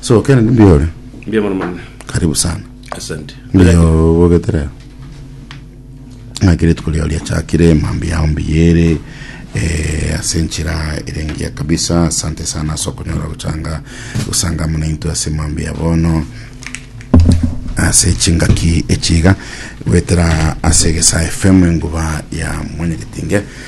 So Kennedy mbuya ore. Mbuya mono mono. Karibu sana. Asante. Mbuya obogetere. Ngakire tukuri ori achakire mambi yao mbiyere eh, ase enchera erengia kabisa asante sana ase okonyora gochanga gosanga muna into ase mambi ya bono ase chingaki echiga gwetera ase gesa fm enguba ya mwenye getinge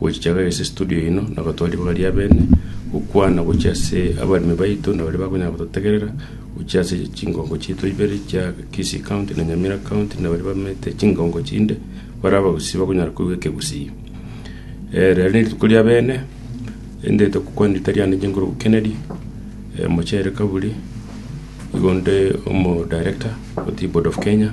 Gochichagaria ase estudio yaino na gotwara ribaga ri'abene, gokwana gochia ase abaremi baito na baria bakonyara gototegerera, gochia ase chingongo chiaito ibere chia Kisii County na Nyamira County na baria bamete chingongo chinde bare abagusii bakonyara koigwa ekegusii. Rero nerituko ri'abene, rinde tokokwana rita riane rigoro Kennedy Omochere Kaburi, igo nde omo director otiye Board of Kenya.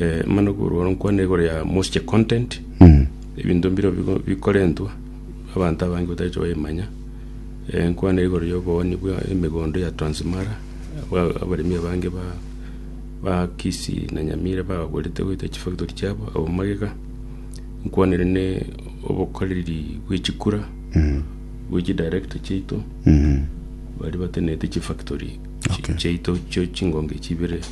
Eh, mano korwa oro nkwane igoro ya moisture content ebinto mbiro bigo- bikorentwa abanto abange batache baimanya Eh, nkwane igoro ya obooni bwa emegondo ya transmara aba- abaremi abange ba ba kisii na nyamira bagagorete goita chifactory chiabo abo magega nkwanere ne obokoreri bwe chikura bwe chidirector chiaito bari batenete chifactory Okay. chiaito chio chingonge chibere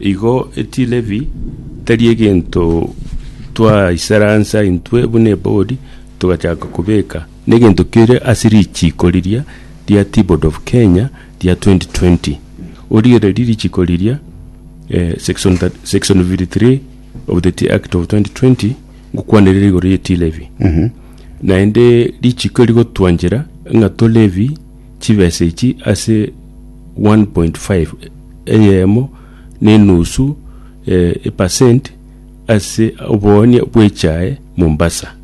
Igo etilevi tari egento twaisera ansa intwe buna ebodi togachaka kobeka negento kere ase richiko riria ria T-board of Kenya ria 2020. Origereria richiko riria eh, section, that, section 53 of the Tea Act of 2020 ngokwanerera igoro ye tea levy naende richiko rigotwanchera ng'a tolevi Chibesa echi ase 1.5, eyemo na enusu epasenti, ase oboonia bw'echae Mombasa.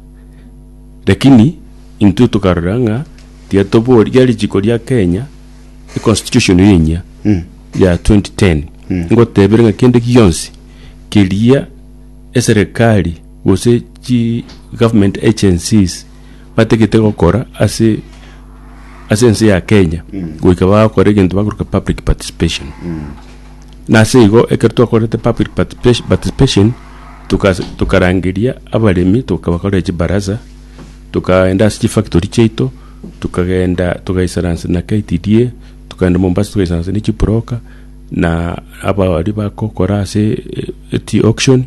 Lakini intwe tokarora ng'a tiga tobori ria richiko ria Kenya, econstitution eye enyia ya 2010 ngotebire ng'a kende gionsi keria eserekari gose chi government agencies Batagete gokora ase ase ense ya Kenya goika bagakora egento bakoreta public participation na ase igo ekero twakorete public participation participation tukas tukarangeria abaremi tokabakorera chibaraza tokaenda ase chifactory chiaito tokagenda togaisarance na KTDA tokagenda Mombasa togaisarance ne chibroka na aba abaria bagokora ase eti auction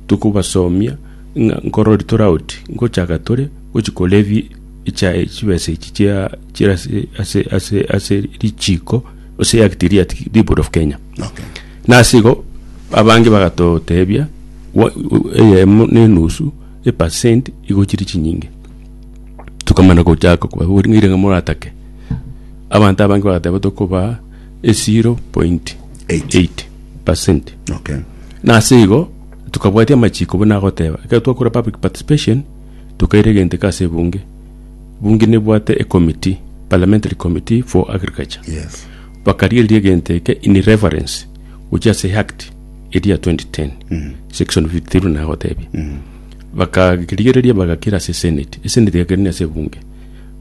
tokobasomia. ng'a nkorori tore aoti, ngochaka tore gochi korebi echae chibesa echi chia chira ase ase ase ase richiko ase yakiti ria Dipod of Kenya. Okay. Nase igo abange bagatotebia wa- u- eyemo na enusu epasenti igochiri chinyinge tokamana gochaka kobabori ng'aire ng'a moratake abanto abange bagateba tokobaa e 0.8 Eight. pasenti Okay. nase igo Tokabwatia amachiko buna agoteba. Ekero twakora public participation, tokairegenteka ase ebunge. Bunge nebwate e committee, parliamentary committee for agriculture. Yes. Bakarigereria egento eke in reference gochia ase act eria 2010 section 53 buna agotebia bakarigereria bagakira ase senate esenate egakerania ase ebunge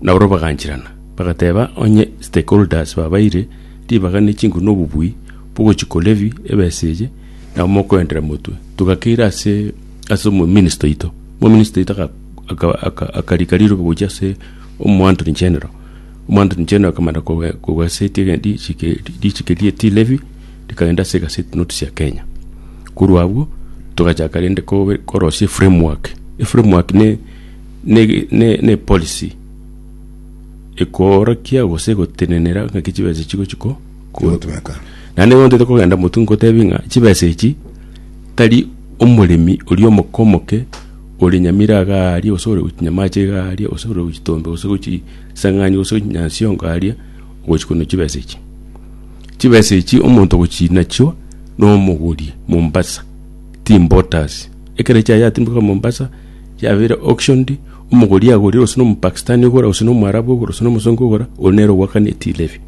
na oro baganchirana bagateba onye stakeholders babaire ribaga ne chinguru na obobui bogochia kolevy ebesa eye Nabo mokoendera motwe. Togakeira ase ase omominista oito. Omominista oito aga- aka- aka- akarika riroba gochia ase omoantony general. Omoantony general akamana koga- kogaseti ege- richiko eri- richiko ria tea levy, rikagenda ase egaseti notice ya Kenya. Korwa abwo, togachaka rende kobe korosia eframework. Eframework ne- nege- ne- ne epolicy ekoorokia gose egotenenera ng'aki chibesa echi chigochi ko. kotweka. Naende nigo ntete kogenda motwe ngotebie ng'a chibesa echi tari omoremi oria omoke omoke ore Nyamira iga aria gose ore gochi Nyamache iga aria gose ore gochi Tombe gose gochi Isang'ani gose gochi Nyansiongo aria ogochi kono chibesa echi. Chibesa echi omonto ogochi nachio na omoguri Mombasa ti importers. Ekero echiaye chiatimbokire Mombasa chiabeire auctioned omoguri agorire gose na Omopakistani ogora gose na Omwarabu ogora gose na Omosongo ogora ore nere ogwakana tea levy.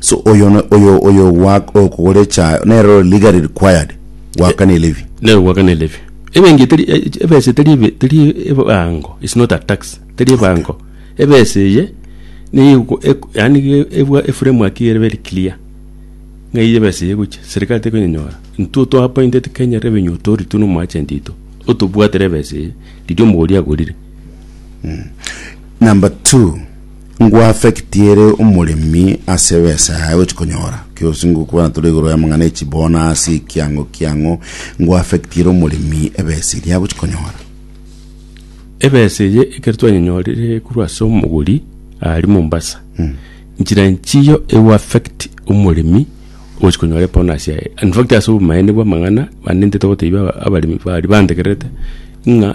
So oyo no- oyo oyo gwa- okogora echayo nere ore legally required goakana elevi. Nero gwakana elevi. Ebenki teri eh, ebesa teri ebe teri ebango is not a tax teri ebango. Ebesa eye niyo eko eko yaani ge ebwa eframework ere very clear ng'a eye ebesa eye egochia serikali tekonyenyora intwe otwa appointed Kenya Revenue Authority no omwachenti oito otobwatere ebesa eye riria omogori agorire. Number two. Ngwaffectiere omoremi ase ebesa yaye gochia konyora kirosi ngokwana tore igoro y'amang'ana ya chibona ase ekiango kiang'o ngwaffectiere omoremi ebesa eria agochia konyora. Ebesa eye ekero twanyonyorire korwa ase omogori aria Mombasa nchira nchiyo egoaffect omoremi ogochia konyora ebonus yaye in fact ase obomaene bw'amang'ana naende ntogotebi abaremi baria bantegererete ng'a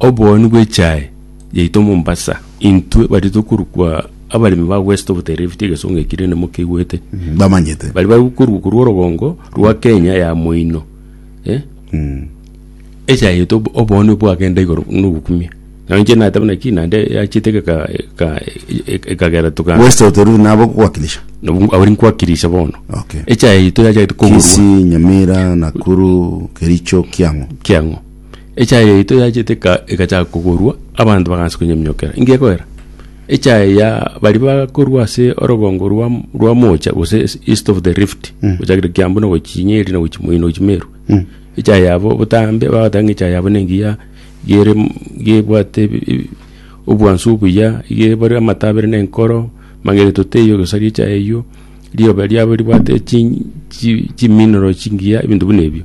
obooni bw'echae. yaito Mombasa, intwe baria tokorukwa abaremi ba West of the Rift, egesongo eki rende mokeigwete, Mm, bamanyete bari bari gokorukwa korwa orogongo rwa Kenya ya moino eh? Mm. echa yaito ob- oboonwa bwagenda igoro nogokumia na inche nateba naki naende yachete eka- eka- eka- ekagera toka west of the river nabo gwakilisha Nabo- abari nkwakirisha bono Okay. echa yaito yachagete kogorwa kisi nyamira nakuru kericho kiang'o kiang'o Echaye yaito yachete eka- egachaka kogorwa, abanto bagaancha konyeminyokerera. Inki gekoera? Echaye ya baria bakorwa ase orogongo rwa rwa Mocha gose es- east of the rift, gochakera Kiambu na gochia Nyeri na gochia Moi na gochia Meru. Echaye yabo botambe bagoteba ng'a echaye yabo nengiya gere m- gebwate ebi- ebi- obwansu obuya, iga ebare amato abere na enkoro, mageto teiyo egesaria echaye eyio, rioba riabo ribwate chi- chi- chimineral chingiya, ebinto buna ebio.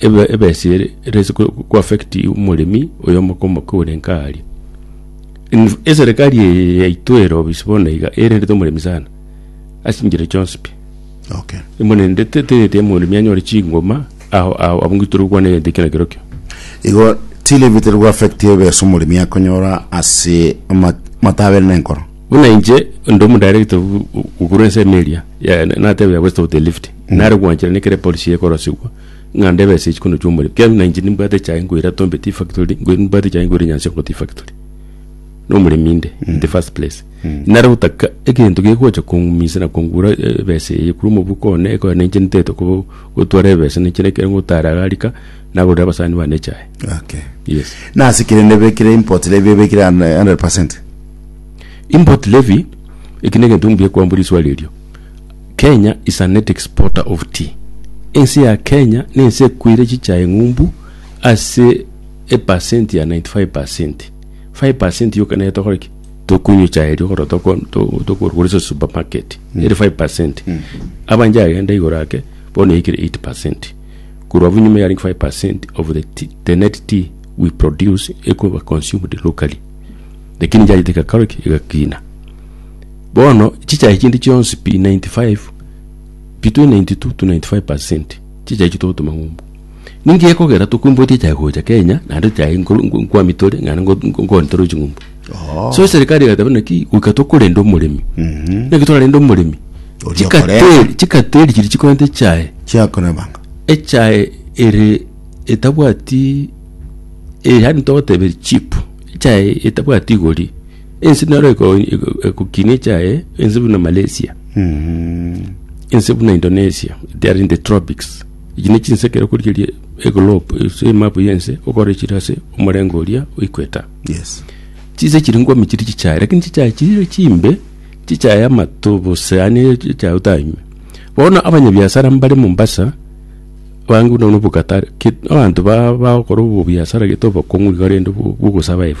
Ebesa ere erase koaffect omoremi oyo omoke orenka aaria. Eserekari eye yaito ere obisi bono iga erendete omoremi sana ase enchera chionsi pi. Okay. Emorendete etagete omoremi anyore chingoma ao ao abwo ng'iti tore gokwana egento ekio na kerokio. Igo tiri ebi teri goaffect ebesa omoremi akonyora ase amato abere na enkoro. Buna inche onde omodirector okorwa ensemo eria natebia gwesita gotelia lift nare gwanchera nekere epolisi ekorosigwa. ng'a ndebe ase chikono chi'omoremi, ekiagera na inche nimbwate echae nkoira Tombeti efactory, nkoira nimbwate echae nkoira Nyansionkoto efactory. Na omoremi inde, in the first place. Nare gotaka egento gegocha kong'umisa na kongura eh, ebesa eye korwa omobuko one, ekoe na inche ntaete ko- gotwara ebesa na inche neke ngotara iga rika, nagorera abasani bane echae. Okay. Yes. Nase kere ndebekire import levy ebekire 100%. Import levy, eki negento mbuya kwambora riswali erio. Kenya is an exporter of tea. Ense ya Kenya ne ense ekoire chichae ng'umbu ase e percent ya 95 percent. 5 percent yoka nere tokore ki? Tokunywa echae erio korwa toko to- tokorugura ase supermarket. Ere 5 percent. Abanche agenda igoro ake bono yaikire 8 percent. Korwa abwo nyuma yarenge 5 percent of the tea, the net tea we produce ekoba consumed locally. Lakini yachete egakora ki? Egakina. Bono chichae chinde chionsi pi 95 between 92 to 95 percent chichae chitogotoma ng'umbu ninki gekogera tokwimbotia chae gocha Kenya naende chae nkwami tore ng'ana nkoni tore ching'umbu oh. so serikali egateba naki goika tokorenda omoremi mhm. naki torarenda omoremi chikateri chiri chikorenta echae chiakonabanga echae ere etabwati eri handi togoteberi chip echae etabwati igori Ense nero eko- eko- ekokinia echaye ense buna malaysia Mm. ense buna indonesia they are in the tropics echi ne chinse ekero okorigereria eglobe ase emapu yense okore chire ase omorengo oria oequator Yes. chinse chiri ngomi chiri chichaye lakini chichaye chire chimbe chichaye amato bose yaani chichaye otanywe bono abanyabiasara mbare mombasa bange buna buna obokatare ke- abanto ba- bagokora obobiasara gete obokong'u iga rende bwo- bwogosurvive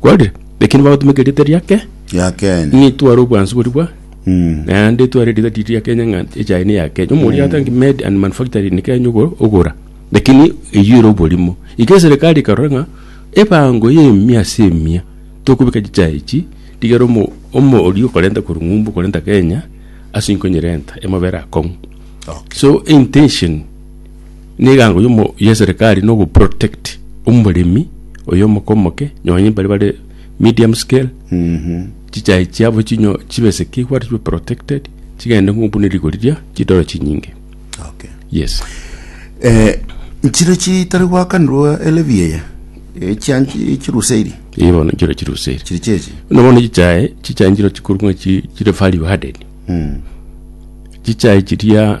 Kware, lakini bagotumeka erieta riake ya Kenya ng'a itware obwansu bori bwa Mm. naende itware erieta riri ria Kenya ng'a echaye ni ya Kenya omoria atangi made and manufacturing ni Kenya ogo- ogora lakini eywo ere oborimo iga eserikari ekarora ng'a ebango ya emia ase emia tokobeka chichae echi rigere omo- omo oria okorenta korwa ng'umbu okorenta Kenya ase nkonyerenta emobere akong'u Okay. so intention Negango yomo yeserikari nogo protect omoremi oyo omoke omoke nonye mbari bare medium scale chichai chiabo chinyo chibe secure chibe protected chigende ng'o buna rigo riria chidoro chinyinge Okay. yes Eh, nchire chitari gwakanirwa elevi eye echianchi echiruseiri eye bono nchiro chiruseri chiri chechi no bono chichae chichae nchiro chikorwa ng'a chi- chire value added chichae chiria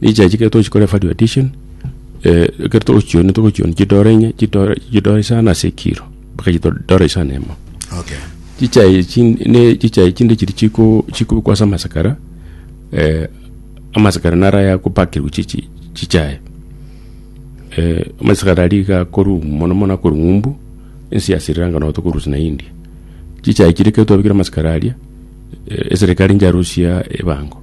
Richachi ekero tochikore value addition eh, ekero togochioni togochioni chidora inye chidora chidora isano ase ekiro mpaka chido- dora isano emo Okay. chichai chin- ne chichai chinde chiri chiko chikobekwa ase amasakara eh, amasakara naro ayakopakerwa chichi chichai eh, amasakara aria iga akorwa mono mono akorwa ng'umbu ense ya Sri Lanka nabo tokorusia na India chichai chiria ekero twabekire amasakara aria eh, eserekari ncharosia ebango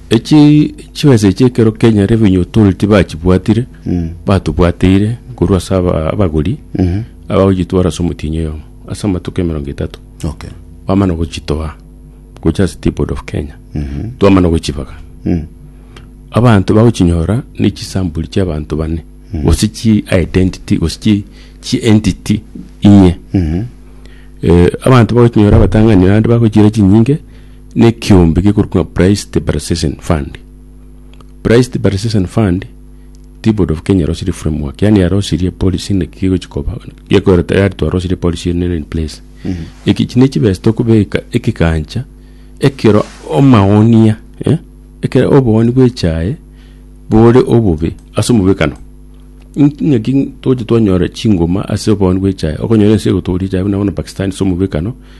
Echi chibesa echi ekero Kenya Revenue Authority bachibwatire, batobwateire korwa ase aba- abagori abagochitwara ase omotienyi oyomo ase amatuko emerongo etato Okay. bamana gochitoa gocha ase Tea Board of Kenya twamana gochibaga abanto bagochinyora ne chisampuli chia abanto bane gose chi identity gose chi chi entity inye Eh, abanto bagochinyora abatang'ani bande bagochira chinyinge Nekiombe gekorwa ng'a Price Depreciation Fund. Price Depreciation Fund ti Board of Kenya yarosirie framework, yani yarosirie policy naki gegochi koba gekoreta yari twarosirie policy eye nere in place. Eki echi nechibesa tokobeka ekegancha ekero omaonia eh, ekero obooni bw'echae bore obobe ase omobekano. Inki ng'aki togocha twanyora chingoma ase obooni bw'echae, okonyora ense egotooria echae buna bono Pakistan ase omobekano.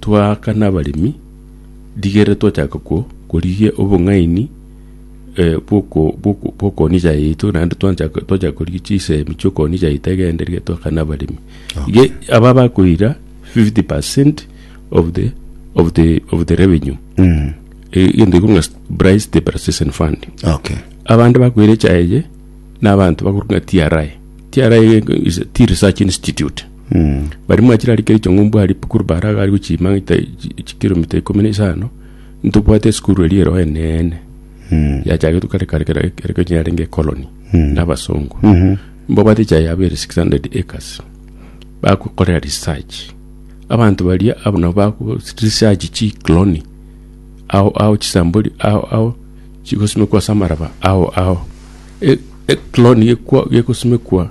Twaakana abaremi, rigeera twachaka ko, korigia obong'aini eh, bw'oko- bw'oko- bw'okoonia echae yaito, naende twanchaka twachaka korigia chisemi chi'okoonia echae yaito egenderire twaakana abaremi. Iga aba bakoira 50 percent of the, of the, of the revenue. Mm. Eh, Egento ekong'a st- Bryce Stabilization Fund. Okay. abande bakwera echae eye na abanto bakorwa ng'a TRI. TRI is a Tea Research Institute. Baria mwachirarikire ching'umbu aria pu- korwa Baraga aria gochia Magita chi- chi- chikiromita ikomi na isano, ntobwate esukuru eria ero eneene, yachagetwe kare kare kera eke- eke yarenge ecolony na abasongo. Mbabwate echaye yabo ere six hundred acres, bagokorera research. Abanto baria abwo nabo bago research chicloni ao ao chisambori ao ao chigosimekwa ase amaraba ao ao. E- ecloni gekwa- gegosimekwa.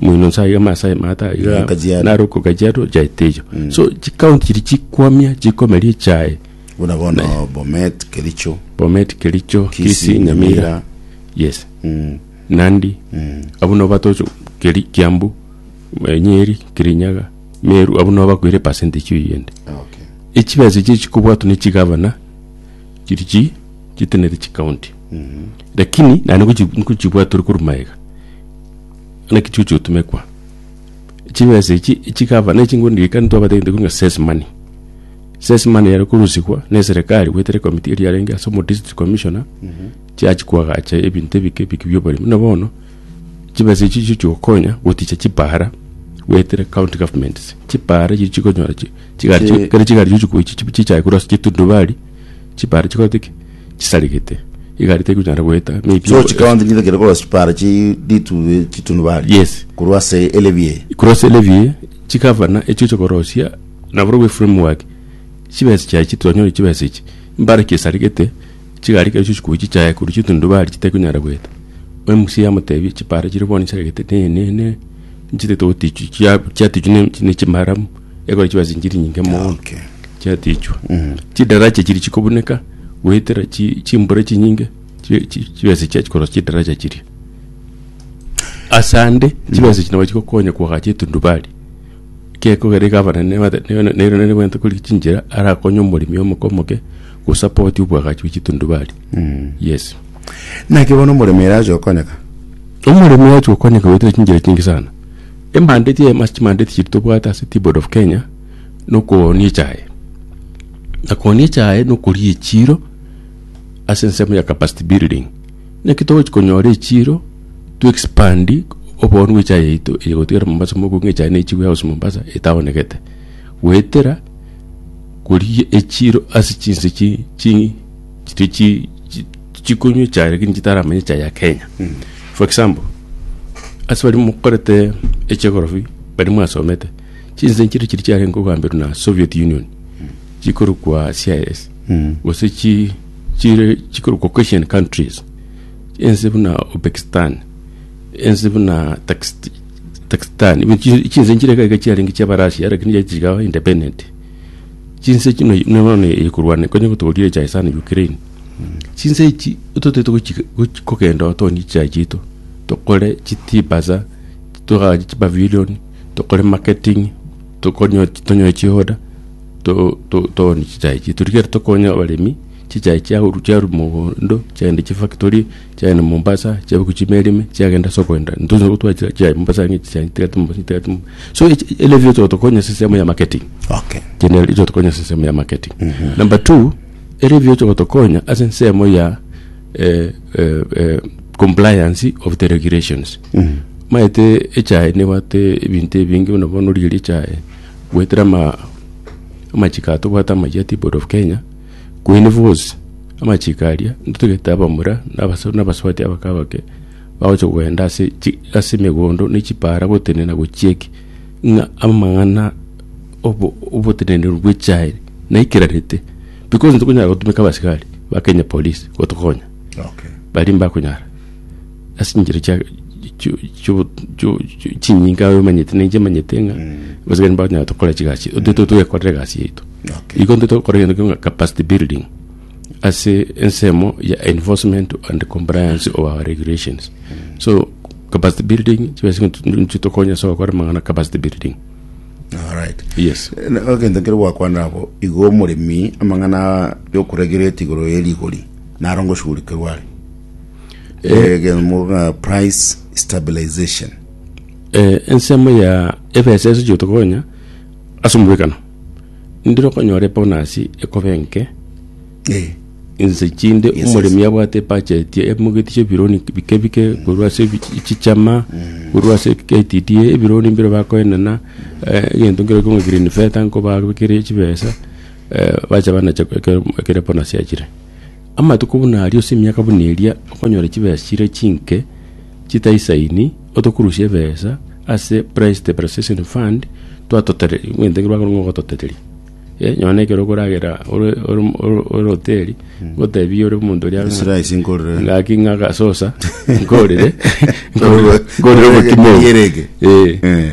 Moino nsa iga amasae maata iga Kajiado. naruko Kajiado nchaete eyo so chikaunti chiria chikwamia chikomeria echae Buna bono Bomet, Kericho. Bomet Kericho Kisii, Kisii Nyamira Nyamira. yes Mm. Nandi abwo nabo batoche Keri Kiambu eh, Nyeri Kirinyaga Meru abwo nabo bakoire percentage eyio ende Okay. echibesa echi chikobwatwa ne chigavana chiri chi chitenere chikaunti lakini naende nkochi- nkochibwatore korwa magega Buna ekichuchu otumekwa. Chibesa echi chikaba ne chinguru ndika ntwabate gete kunga ses money. Ses money yari kurusigwa ne serikali gwetere komiti eri yarenge ase omo district commissioner chiachi kwagacha ebinto ebike ebike bia oboremi. Buna bono chibesa echi chicho chigokonya goticha chipara gwetere county governments. Chipara echi chikonyora chi chigari Chi- kere chigari chigochi chichae korwa ase chitundubari chipara chikorete ki chisarigete, egari tekonyara goeta, maybe So chikaonte nigo ekero korwa chipara chi ritu chitunubari. Yes. Korwa ase elevi eye. korwa ase elevi eye, chigavana echio oche korosia, nabarobwo eframework, chibesa chiaye chi twanyore chibesa echi, mbare ki esarigete, chigari ekero chiochia kobuchia chiaye korwa chitundubari chitekonyara goeta. Mca yamotebia chipara chire bono chisarigete, ne, ne, ne, nchitete gotichwa, chia, chiatichwa ne- ne chimaramu. Ekore chibesa chinchiri nyinge mono Okay. chiatichwa Mm. chidaracha chiri chikobuneka goetera chi- chimbura chinyinge chi- chi- chibesa chiachi korosa chidaracha chiria asande chibesa chino bachigokonya koagacha etundubari kekogera egavana nere nigwente kori chinchera arakonye omoremi omoke omoke gosapoti obwagachi bwa chitundubari Mm. yes Naki bono omoremera aje okonyeka. omoremi ogocha gokonyeka goetera chinchera chinge sana Emande chia ema chimande tichiri tobwate ase Teaboard of Kenya nokoonia echaye na koonia echaye nokoria echiro ase ensemo ya capacity building naki togochi konyora echiro to expand oboongo bwa echaye yaito eye gotigara Mombasa moku ng'a echaye naichigwe yagosa Mombasa etaonegete goetera koria echiro ase chinse chi chi chiria chi- chi- chikonywa echae lakini chitaramanya echae ya kenya for example ase baria mokorete echegorobi baria mwasomete chinse nchiria chiria chiarenge okogamberwa na soviet union chikorokwa cis gose chi- chire chikorokwa caucasian countries ense buna upekistan ense buna Takist- takistan even chi- chinse nchire iga iga chiarenge chiabarasia lakini chiachigawa independent Chinse chino bono ekorwania konye gotoorire echae sana Ukraine. Chinse echi totaete kogenda otonie echae chiaito tokore chitibasa togaache chipavilion tokore marketing tonyore chioda toonie chichae chiaito rigiya tokonya abaremi chichae chiarwa mogondo chiagenda chifactory. Chiagenda Mombasa, chiabeku chimeli ime, chiagenda ase okoenda. Ntonya gotwara chira chiaye Mombasa ng'a echi chiagenda tigati Mombasa, tigati Mombasa. So echi- ere erio echotokonya ase ensemo ya marketing. Okay. Kende erio echotokonya ase ensemo ya marketing. Number two, ere erio echotokonya ase ensemo ya eh, eh, eh, compliance of the regulations. Maete echae nebwate ebinto ebinge buna bono riria echae bwetera ama amachiko ato bwate amayia tea board of Kenya, Kwene bonsi amachiko aria ntotagete abamura na abasore na abasubati abake abake bagocha kogenda ase chi- ase emegondo ne chipaara gotenena gochieke ng'a amang'ana obo- oboteneneri bwe chiaye naikerarete because ntokonyara gotumeka abasigari ba Kenya police gotokonya Okay. baria mbakonyara ase enchera chia chio- chio- chio- chio- chinyinga aye omanyete na inche manyete ng'a gose gari mbanyare tokore chigasi chiaito totete twekorere egasi yaito Okay. igo ntete gokora egento keng'o capacity building ase ensemo ya enforcement and compliance of our regulations so capacity building chibesa nchitokonya ase ogokora amang'ana capacity building Alright. yes Na- egento kere gwakwana abo igo omoremi amang'ana yokuregereti igoro ye rigori naro ngoshugurikerwa are egemoga price stabilization eh, ensemo ya ebesa ase chio tokonya ase omobekano ndiro konyora ebonasi ekobe enke eh, inse chinde Yes, yes. omoremi abwate ebacheti emogeti chia ebironi bike bike korwa ase ebi- chichama Mm. korwa ase KTDA ebironi mbire bakoenana eh, egento nkero ekong'a green feta nkobabekere chibesa eh, bacha banacha ekero ekero ebonasi yachire Amatuko buna aria ase emiaka buna eria okonyora chibesa chire chinke chitaisaini otokurusie ebesa ase Price Stabilization Fund twatotereria omanyete ekero bakorwa ng'a ogototeteria eh nonya na ekero okoragera ore ore ore ore hoteli ngotebie ore omonto oria ng'a Esiraisi nkorere. gaki ng'a agasosa nkorire nkorire nkorire obokima obo Rigereria. Eh. Eh.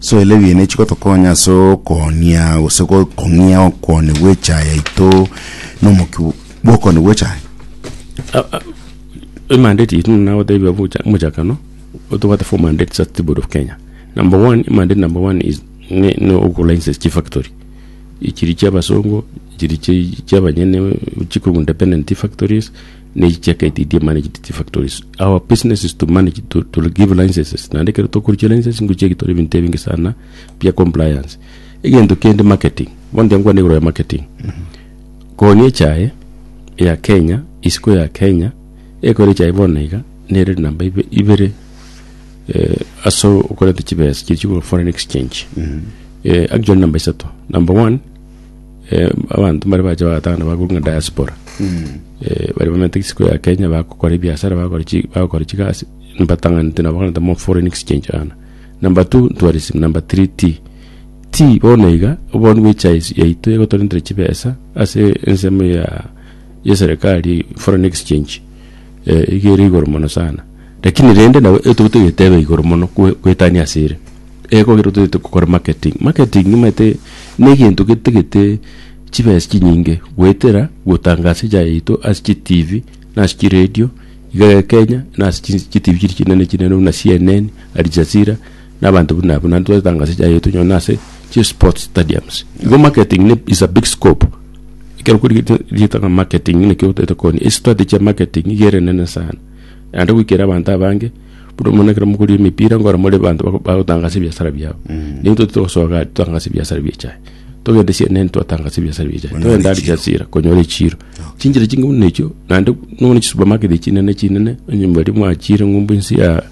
Soela ebiina echi gotokonya ase okoonia gose kong'ia okone gw'echae yaito nomokia bw'okone gw'echae. Emandate yaito nagotebia omochakano otobwate for mandate sa tea board of Kenya. Number one mandate number one is ne ne ogo license chi factory ichiri chia abasongo ichiri chia abanyene chikogunda independent tea factories ne chichaketi eria managed chi factories our business is to manage to, to give licenses naende ekero tokoruchia licenses ngochia gitore ebinto ebinge sana bia compliance egento kende marketing bono tiga nkwane igoro ya marketing koni echae ya kenya isiko ya kenya ekore echae bono iga nere namba ibe- ibere eh, ase okoreta chibesa chichigwa foreign exchange eh, actually namba isato number one Eh, abanto mbare bacha bagatang'ana bakorwa ng'a diaspora Eh, bari bamanyete isiko ya kenya bagokora ebiasara bagokora chi- bagokora chigasi mbatang'anete nabo bono ntamo foreign exchange ana number two tourism number three tea tea bono iga obonye bwa echae ase- yaito egotorentere chibesa ase ensemo ya ya eserekari foreign exchange eh, iga ere igoro mono sana Lakini rende nabo ekero tobwate egetebe igoro mono kwe kwetania ase ere, ego ekero totagete gokora marketing. Marketing nimaete na egento getagete chibesa chinyinge goetera gotangasa echae yaito ase chi tv na ase chi radio iga iga Kenya na ase chins chi tv chiri chinene chinene buna CNN, Aljazira na abanto buna abwo. Naende twatangasa echae yaito onye na ase chi sports stadiums. Igo marketing ne is a big scope, ekero okorigereria rietana marketing naki otagete gokora estrategy ya marketing nigo ere enene sana. naende goikera abanto abange, buna omonyene ekero mokoria emepira nkoro more abanto bako- bagotangasa ebiasara biabo. Naintwe toti togosoka iga totangase ebiasara bia echae. Togende cnn twatangasa ebiasara bia echae, Onyore togende chiro. Aljazira konyora echiro. Chinchera chinge buna echio, naende nonya chisupermarket chinene chinene, onye mbaria mwachire ng'umbu inse ya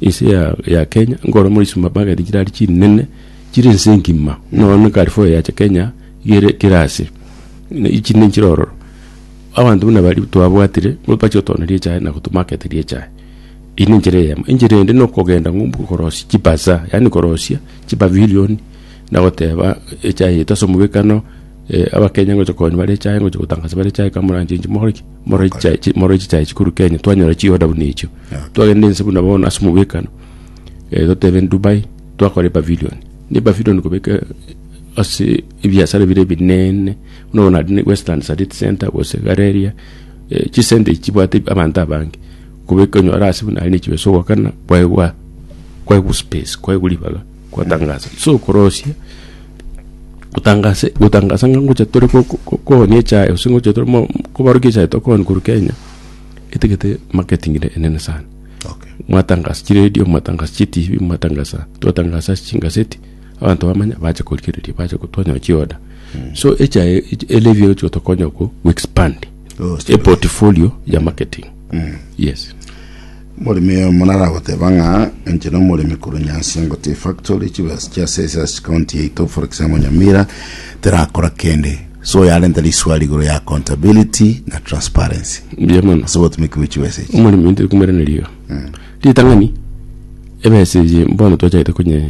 inse ya ya Kenya, nkoro more chisupermarket chire aria chinene, chire ense engima. Buna bono Carrefour yacha Kenya, iga ere kera ase, ne- echinde nchire ororo. Abanto buna baria twabwatire nigo bachia gotoneria echae na gotumaketeria echae. Eyio nenchera eyemo. Enchera ende nokogenda ng'umbu korosia chibazaar, yaani korosia chipavilioni na goteba echae yaito ase omobekano abakenya ngocha konywa bare echae ngocha gotangaza bare echae kamoranche inche mogore ki? Morore chichae chi morore chichae chikorwa Kenya twanyora chioda buna echio. Twagenda ense buna bono ase omobekano gotebe Dubai twakora epavilioni. Na epavilioni kobeka ase ebiasara bire ebinene. Buna bono naende Western Sarit Centre gose Gareria, chisenta echi chibwate abanto abange, koba ekonyora ase buna aria nechibeso ogokana kwaigwa kwaigwa space kwaigwa ribaga kwatangasa so korosia otangase gotangasa ng'a ngocha tore ko- ko- ko- kooni echae gose ngocha tore mo kobaruki echae tokooni korwa Kenya, etagete marketing ene enene sana Okay. mwatangasa chiredio mwatangasa chitibi mwatangasa twatangasa ase chingaseti. Abanto bamanya bache korigereria bache go- twanyora chioda so echa elevi ero chigotokonya go expand Oh, a portfolio ya marketing yes omoremi oyo monaragoteba ng'a inche na omoremi korwa nyansi ngote factory chibesa chia sesa ase county yaito for example nyamira terakora kende so yarenta riswali igoro ya accountability na transparency mbuya mono ase obotumeki bwe chibesa echi omoremi ntokumeraneria iga ritang'ani ebesa eye bono twachagete konye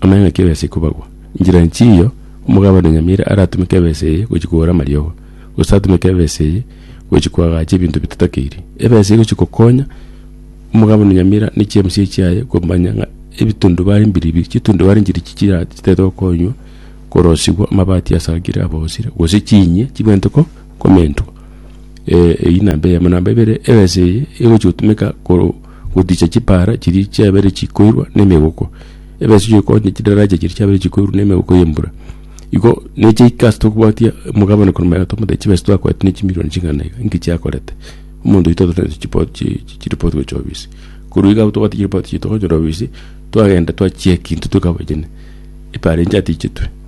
Amang'ana ki'ebesa ekobagwa. Inchera enchia eyio, omogabane o nyamira aratumeke ebesa eye gochia kogora amariogo, gose atumeke ebesa eye gochia koagacha ebinto bitatakeirie. Ebesa egochia gokonya omogabane o nyamira ne chiemsio chiaye komanya ng'a ebitundubare mbiribiri, chitundubare nchiri chi chira chitaete gokonywa korosigwa amabati asagire abosire, gose chinyie chibwenerete ko. komentwa. Eh, eyio namba eyemo. Namba ebere, ebesa eye egochi gotumeka koro goticha chipara chiria chiabere chikoirwa na emegoko. Ebesa eyo ekonya chidaraja chiria chiabere chikoirwa na emegoko ya embura. Igo neche ike ase tokobwatia omogabane korwa omogati omote chibesa twakorete ne chimirioni chingana iga, inki chiakorete? Omonto oito otoretere chipot chi chiripoti gochia obisi. Korwa iga abwo tobwate chiripoti chiaito twachia korwa obisi, twagenda twachiekintu toka abachene, epara enche yatichetwe.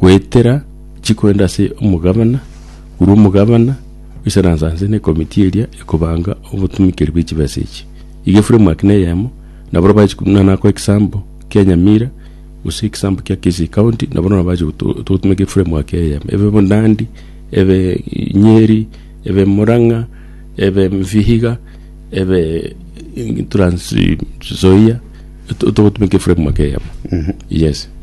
goetera chikorende ase omogabana, korwa omogabana gochia na nsa nse na ekomiti eria ekobanga obotumikeri bwe chibesa echi. Iga eframework ne eyemo na bono bache ko- na nakoe egesample kia Nyamira gose egesample kia Kisii county nabo na bache goto- togotumeka eframework eyemo ebe bo Nandi, ebe Nyeri, ebe Murang'a, ebe Vihiga, ebe Trans Nzoia, to- togotumeka eframework eyemo, yes.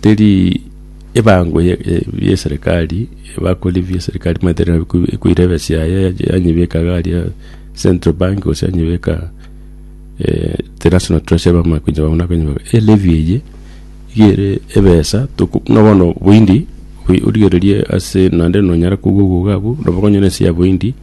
Teri ebango y'eserekari bakore bie eserekari maete ekoira ebesi yaye yanyebeka iga aria central bank gose yanyebeka the national treasury bamanye konya buna konyebeka. Elevy eye iga ere ebesa toko buna bono boindi origereria ase naende nonyara kogwa obogo abwo nabo okonyora ense ya boindi.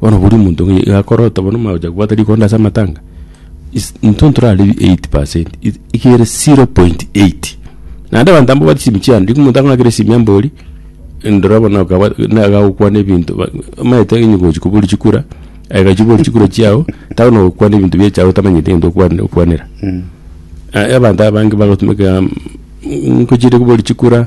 Bono bori omonto iga iga akorota bono omanye gocha kobwata rikonda ase amatanga, is intwe ntoraribi eight percent i- iga ere zero point eight. Naende abanto abwo babwate chisimu chiane, riria omonto akong'akera esimi ambori, ndora bono okabwat naga gokwana ebinto ba omanyete onye gochi kobori chikura, aye gachi kobori chikura chiago, taba nogokwana ebinto bia echago otamanyeti egento okwane okwanera. Abanto abange bagotumeka ngochire kobori chikura.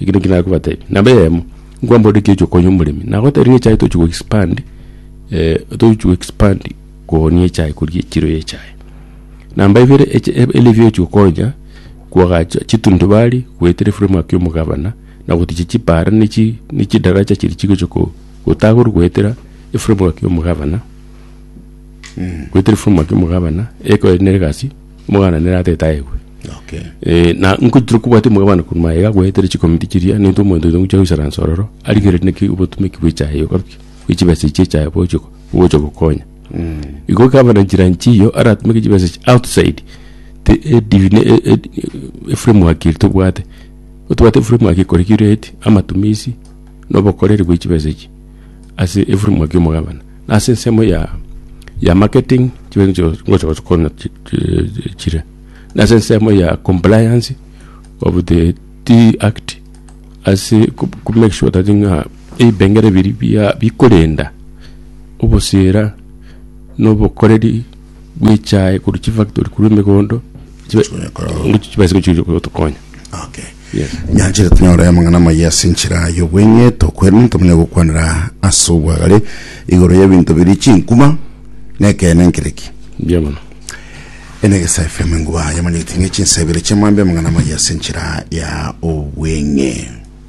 Eki naki nakobatebia. Namba eyemo, nkwamborire ki oche konya omoremi? Nagotebirie echae tochi go expand, eh, tochi go expand kogonia echae koria echiro ya echae. Namba ibere eche elivio ochi gokonya koagacha chitundubari goetera eframework ya omogabana na gotichi chipara ne chi ne chidaracha chiri chigocha ko gotagorwa goetera eframework ya omogabana, goetera eframework ya omogabana, eko ere nere egasi. Omwana nere atete aegwe. Okay. Eh, na nkoitire kobwate omogabane korwa maega agoetere chikomiti chiria nintwe omonto oito ngochia goisara nsororo arigereri neki obotumeki bw'echaye okaruki bw'echibesa echi echaye bogochia go- bogochia gokonya igo ekaba na nchera nchi iyo aratumeke chibesa echi outside te edivine e- e- e- eframework eri tobwate otobwate eframework ekore create amatumisi na obokoreri bwa chibesa echi ase eframework ya omogabane. na ase ensemo ya ya marketing chibere nicho ngocha gochikona chi- chi- chire na ase ensemo ya compliance of the tea act ase ku ku make sure that ng'a ebipengere biri bia bikorenda obosera na obokoreri bwa echae korwa chifactory korwa emegondo chibe Chikonyakora. ngochi chibese gochi gotokonya Okay. Nyanchete tonyore amang'ana amaya ase enchera y'obweng'eto kwene, ntomanye gokwanera ase obwagare igoro y'ebinto biri chinkuma nekeene nkere ki? Mbuya mono. Enegesa FM enguba yamanyete ng'e chinsa ibere chiamambia amang'ana amaya ase enchera ya obweng'e.